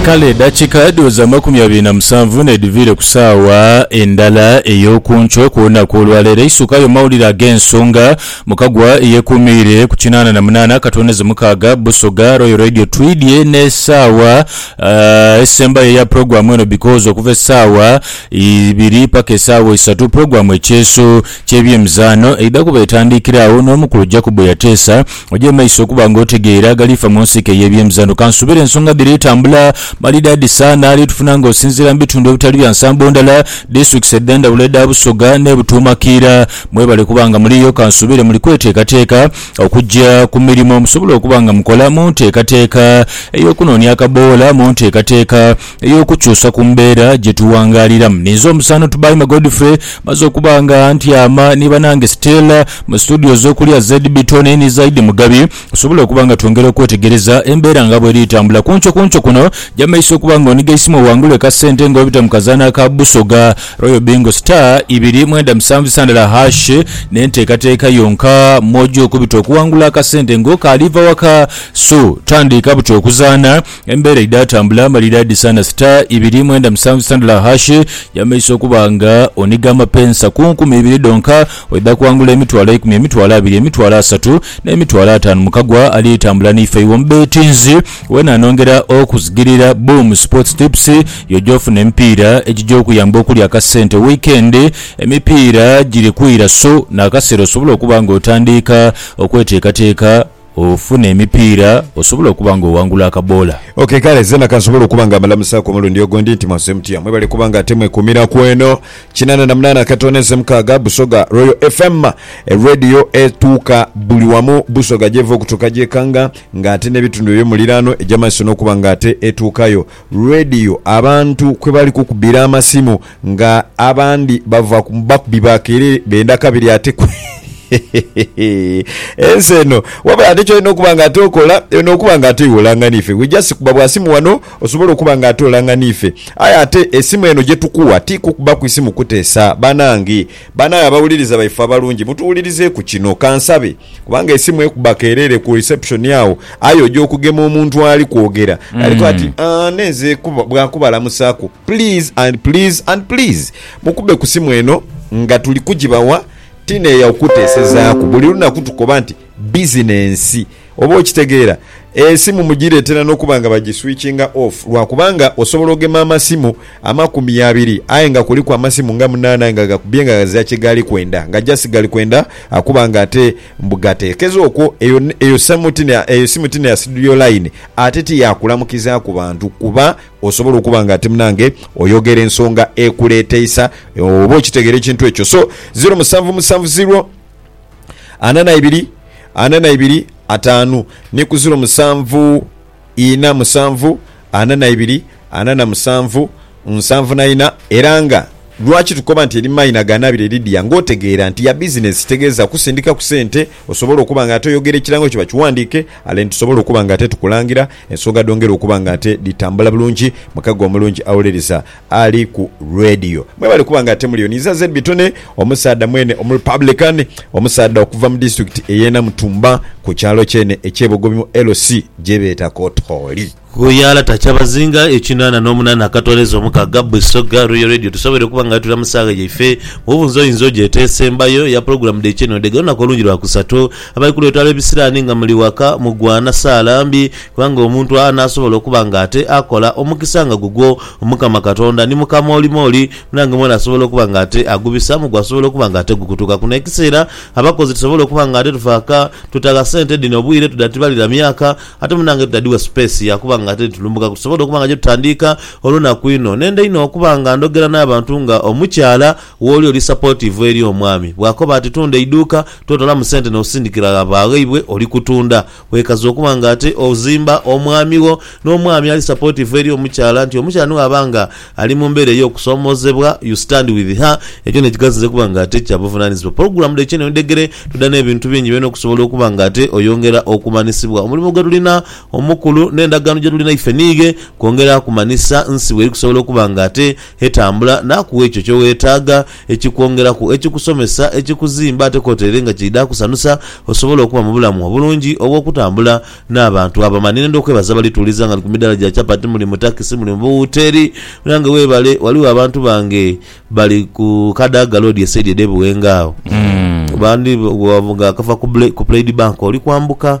Kale edakika dhooza amakumi abiri na musanvu n'edhiviire ku saawa endala ey'oku nkyo okw'olunaku olwaleero, eisukayo mawulire ag'ensonga mukagwa eyekuumiire ku kinaana na munaana katondeze mukaaga Busoga Royal Radio. Twidhye n'esaawa esembayo eya pulogulaamu eno because okuva esaawa ibiri paka esaawa isatu pulogulaamu ekyeeso ky'ebyemizaano eidha kuba etandiikire agho n'omukulu Jacob Yateesa. Oje mu maiso okuba nga otegeera agali fa mu nsiike y'ebyemizano. Kansuubire ensonga dhiri tambula malidaadi sa n'ali tufuna nga osinziira mu bitundu ebitali bya nsambo ndala, Disitulikisi edhendhawulo edha Busoga n'e Butuuma Kiira. Mwebale kuba nga muliyo, kansuubire muli kweteekateeka okugya ku mirimo musobole okuba nga mukola mu nteekateeka ey'okunoonia akaboola mu nteekateeka ey'okukyusa ku mbeera gye tuwangaaliramu. Ninze omusaano Tubaime Godfrey maze okuba nga ntyama ni banange Stella mu situdiyo z'okulya ZB Tonny ni Zaidi Mugabi tusobole okuba nga twongera okwetegereza embeera nga bw'eri etambula. Ku nkyo ku nkyo kuno Jamaisi okuba nga oniga eisimu owangule ka ssente nga obita mu kazaanho aka Busoga Royal Bingo Star ibiri mwenda musanvu isandhala hash n'enteekateeka yonka mw'oja okubita okuwangula akasente nga okaali va waka. So tandiika buti okuzaana. Embeera edhaatambula amalira dhisaana star ibiri mwenda musanvu sitandula hash y'amaiso okuba nga onhiga amapensa ku nkumi ibiri dhonka oidha kwangula emitwalo eikumi, emitwalo abiri, emitwalo asatu n'emitwalo ataanu mu kagwa ali tambula n'ife iwe omubeetinzi wena anongera okusigirira Boom Sports Tips yo gy'ofuna emipiira egija okuyamba okulya akasente weekend emipiira giri kwira so n'akaseera osobola okuba nga otandiika okweteekateeka ofune emipiira osobole okuba nga owangula akaboola. Ok kale zena kansobole okuba nga mbalamusaaku omulundi ogundi nti mwazze mutya? Mwebale kuba nga ate mwekuumira ku eno kinana na munaana akatono eze mukaaga Busoga Royal FM e Radio etuuka buli wamu Busoga gyeva okutuuka gyekanga nga ate n'ebitundu eby'omuliraano egy'amaiso n'okuba nga ate etuukayo Radio abantu kwe bali kukubira amasimu nga abandi bava ku bakubi ba kerere benda kabiri ate ku ensi eno wabula ate kyolina okuba nga ate okola eno okuba nga ate iwe olanga nife we just kuba bwa simu wano osobola okuba nga ate olanga nife aye ate esimu eno gyetukuwa ti kukuba ku isimu kutesa banange banange abawuliriza baife abalungi mutuwulirizeku kino kansabe. Kubanga esimu ekuba kerere ku reception agho aye oja okugema omuntu ali kwogera aliko ati "Ah, nenze kuba- bwa kubalamusaku please and please and please mukube ku simu eno nga tuli kugibawa tineeya kukutesezaaku buli lunaku tukoba nti bizinensi oba okitegeera esimu mugiretera nokuba nga bagiswitchinga off lwakubanga osobola ogema amasimu Amakumi abiri aye nga kuliku amasimu nga munaana nga gakubye nga ghazira kye gaali kwenda nga just gali kwenda akuba nga ate mbu gateekeze okwo eyo eyo samu ti eyo simu ti neya studio line ate ti ya kulamukizaaku bantu kuba osobola okuba nga ate munange oyogera ensonga ekuleeteisa oba okitegeera ekintu ekyo so ziro musanvu musanvu ziro ana na ibiri ana na ibiri ataanu ni ku ziro musanvu ina musanvu, ana na ibiri, ana na musanvu, nsanvu na ina, era nga. Lwaki tukoba nti eri maina ga Nabire Lydia nga otegeera nti ya bizinensi kitegeeza kusindika ku sente osobole okuba nga ate oyogera ekirango kyo bakiwandiike ale nitusobola okuba nga ate tukulangira ensonga dhongere okuba nga ate dhitambula bulungi mukago omulungi awolereza ali ku radio. Mwebale kuba nga ate muliyo ni iza ZB Tony omusaadha mwene omu Republican, omusaadha okuva mu district eye Namutumba ku kyalo kyene ekye Bogobi mu LC gyebeeta Kotooli. Ghuyala takya bazinga ekinana nomunana akatwaleza omukaga Busoga Royal Radio tusobere okuba nga tuli amusaagha yaife mubunza oyinza ogyeta esembayo eya pulogulamu dhe kyenodha ega lunaku olungi lwa kusatu abali kulwetwala ebisirani nga muli waka mugwana saala mbi kubanga omuntu anasobola okuba nga ate akola omukisa nga gugwo Omukama Katonda ni mukamoolimooli, munange mwene asobola okuba nga ate agubisaamu gwasobola okuba nga ate gukutuka kuno ekiseera. Abakozi tusobola okuba nga ate tufaaka, tutagha sente dhino bwire, tudhatibalira myaka, ate munange tudhadhigha space ya kuba nga ate ni tulumbukaku. Tusobola okuba nga gye tutandiika olunaku inho. Nenda inho okuba nga ndhogera n'abantu nga omukyala wooli oli supportive eri omwami. Bw'akoba ati tunda eiduuka, totolamu sente n'osindikira gha ba ghaibwe, oli kutunda. Weekaze okuba nga ate ozimba omwami wo, n'omwami ali supportive eri omukyala nti omukyala ni bw'aba nga ali mu mbeera ey'okusoomoozebwa, you stand with her, ekyo n'ekigaziza okuba nga ate kya buvunaanyizibwa. Pulogulaamu dha Ekyeneno Edhegere tudha n'ebintu bingi byona okusobola okuba nga ate oyongera okumanhisibwa omulimo gwe tulina omukulu n'endagaano gye tulina ife n'ighe kwongera kumanhisa nsi bw'eri kusobola okuba nga ate etambula n'akugha ekyo ky'oweetaaga ekikwongeraku, ekikusomesa, ekikuzimba ate kwotaire nga kiidha kusanusa osobole okuba mu bulamu obulungi obw'okutambula n'abantu abama. Ninenda okwebaza abali tuwuliza nga ndi ku midaala gya chapati, muli mu takisi, muli mu buwuteeri. Munange weebale. Ghaligho abantu bange bali ku Kadaga Road esaidi edh'e Buwenga agho. Abandi bw'ovuga okava ku Plaid Bank oli kwambuka.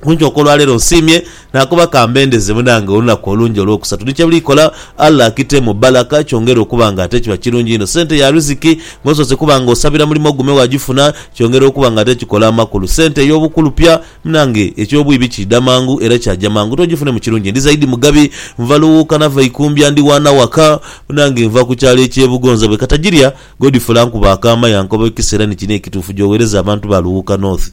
Kunkyoka olwaleero nsiimye nakoba kambendeze munange olunaku olungi olwokusatu ni kyebuli kola Allah akitemu bbalaka kyongere okuba nga ate kiba kirungi inho sente ya riziki ngosoose kuba nga osabira mulimo ogume wagifuna kyongera okuba nga ate kikola amakulu sente eyobukulupya munange ekyobwibi kiidha mangu era kyaja mangu togifune mu kirungi ndi zaidi mugabi nva luwuuka nava ikumbya ndi waana waka munange nva ku kyalo ekye bugonza bwekatagirya Godfrey ankuba akaama yankoba ekisa era nikino ekituufu gyowereza abantu ba luwuuka north.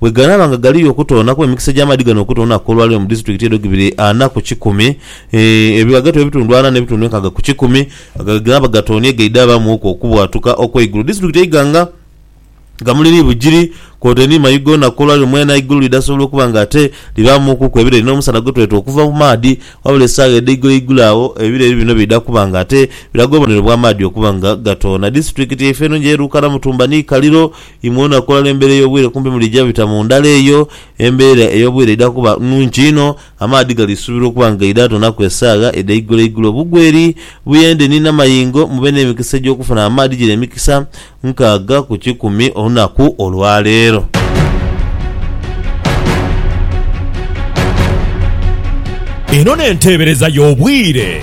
Bwe ganaaba nga galiyo okutoonaku, emikisa egy'amaadhi gano okutoonaku olwaleero mu disitulikiti edho gibiri ana ku kikumi, ebyo ghagati w'ebitundu ana n'ebitundu enkaaga ku kikumi nga bwe ganaaba gatoonie gaidhabamu ku okubwatuka okw'eigulu. Disitulikiti eiga nga Kamuli ni Bugiri kwotaire ni Mayu goona ku olwaleero mwena eigulu lidhasobola okuba nga ate libaamukuku ebireri n'omusana gwe tweta okuva ku maadhi wabula esaawa edheiguloigulo agho ebireri bino biidha kuba nga ate biraga obubonero bw'amaadhi okuba nga gatoona. Disitulikiti yaife enho ng'eruukana Mutumba ni Kaliro. Imwe olunaku olwo embeera ey'obwire kumpi mwidhija bita mu ndala eyo. Embeera ey'obwire eidha kuba nnhungi inho. Amaadhi galiisuubirwa okuba nga gaidha tonaku esaagha edha iguloigulo. Bugweri, Buyende ni Namayingo mube n'emikisa egy'okufuna amaadhi gino emikisa nkaaga ku kikumi olunaku olwaleero. Eno n'enteebereza y'obwire.